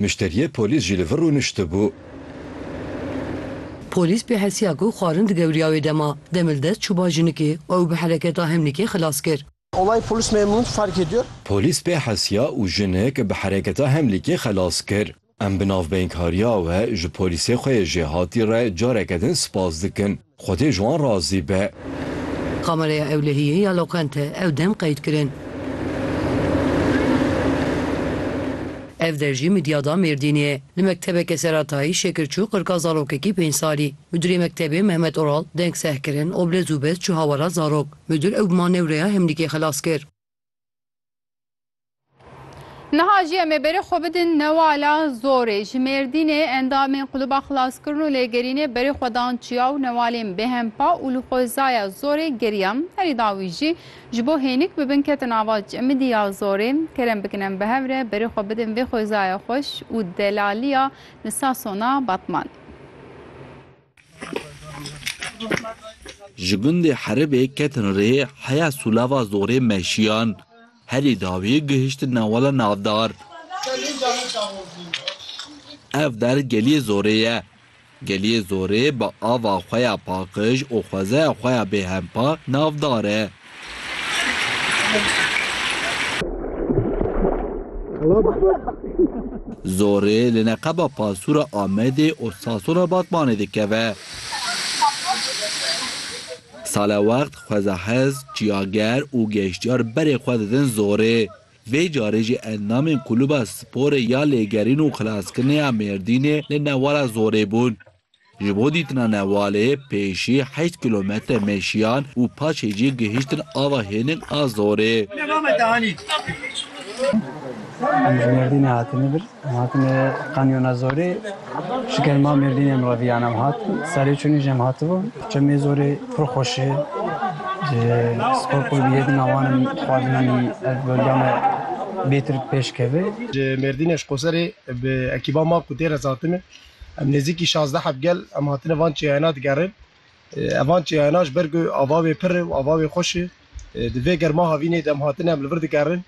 Muşteriyê polîs jî li vir rûniştibû. Polîs pê hesiya ku xwarin digewriya wê dema, demê li dest çûba jinikê û ew bi hereketa hemnîkê xilas kir. Olay polis memnun fark ediyor. Polîs pê hesiya û jinik bi hereketa hemlîkê xelas kir. Em bi navbeynkariya we ji polîsê xwe yê jêhatî re careke din spas dikin. Xwedê ji wan razî be. Kamereya ewlehiyê ya loqente ew dem qeyd kirin. Ev der jî Midyada Mêrdînê ye. Li mektebeke seratayî şekir çû qirka zarokekî pênc salî. Mudîrê mektebê Mehmet Oral deng seh kirin û bi lez û bez çû hawala zarok. Mudîr ew bi manewreya hemlîkê xilas kir. Niha jî em ê berê xwe bidin newala zorê. Ji Mêrdînê endamên Quluba Xilaskirin û Lêgerînê berê xwe dan çiya û newalên bêhempa û li xwezaya zorê geriyan. Herî dawî jî ji bo hênik bibin ketin ava Çemidî ya zorê. Kerem bikin em bi hev re berê xwe bidin vê xwezaya xweş û delaliya li Sasona Batmanê. Ji gundê Heribê ketin rê heya Sûlava Zorê meşiyan. Herî dawî gihiştin Newala Navdar. Ev der geliyê Zorê ye. Geliyê Zorê bi ava xwe ya paqij û xwezaya xwe ya bêhempa navdar e. Zorê li neqeba Pasûra Amedê û Sasûra Batmanê dikeve. Sala wext xwezahez, çiyager û geştyar berê xwe didin zorê. Vê carê jî endamên Kulûba Sporê ya Lêgerîn û Xilaskirinê ya Mêrdînê li newala zorê bûn. Ji bo dîtina Newalê, pêşî heşt kîlometre meşiyan û paşê jî gihîştin ava hênik a Zorê. Em ji Mêrdînê hatine vir, em hatine Kanyona Zorê. Ji kerema Mêrdînê em re viyan em hatin. Serê çûnê jî em hatibûn. Çemê Zorê pir xweş e. Ji Spor Kulîbê Yedîna Wan em dixwazin anî ev bölgeya me bêtir pêş keve. Ji Mêrdînê ji Qoserê bi ekîba ma ku tê re hatine, Em nêzîkî şazdeh ev gel em hatine van çêyayna digerin. Evan çêyayna ji ber ku ava wê pir e û ava wê xweş e. Di vê germa havînê de em hatine em li vir digerin.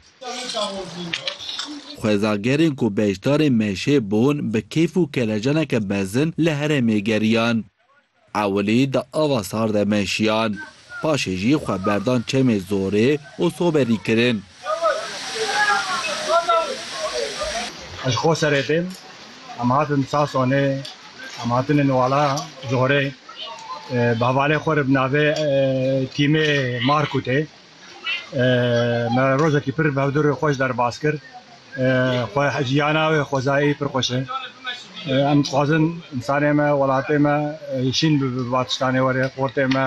Xwezagerên ku beşdarên meşê bûn bi keyf û kelecaneke mezin li herêmê geriyan. Ewilî di ava sar de meşiyan, paşê jî xwe berdan çemê zorê û soberî kirin. Ez ji Qoserê têm, em hatin Sasonê, em hatine Nuwala Zorê, bi hevalê xwe re bi navê Tîmê Markûtê Me rojekî pir bihevdûrê xwe ji derbas kir. Xwe jiyana wê xwezayî pir xweş e. Em dixwazin insanê me, welatê me şîn bibe bi va tiştanê were, xortê me,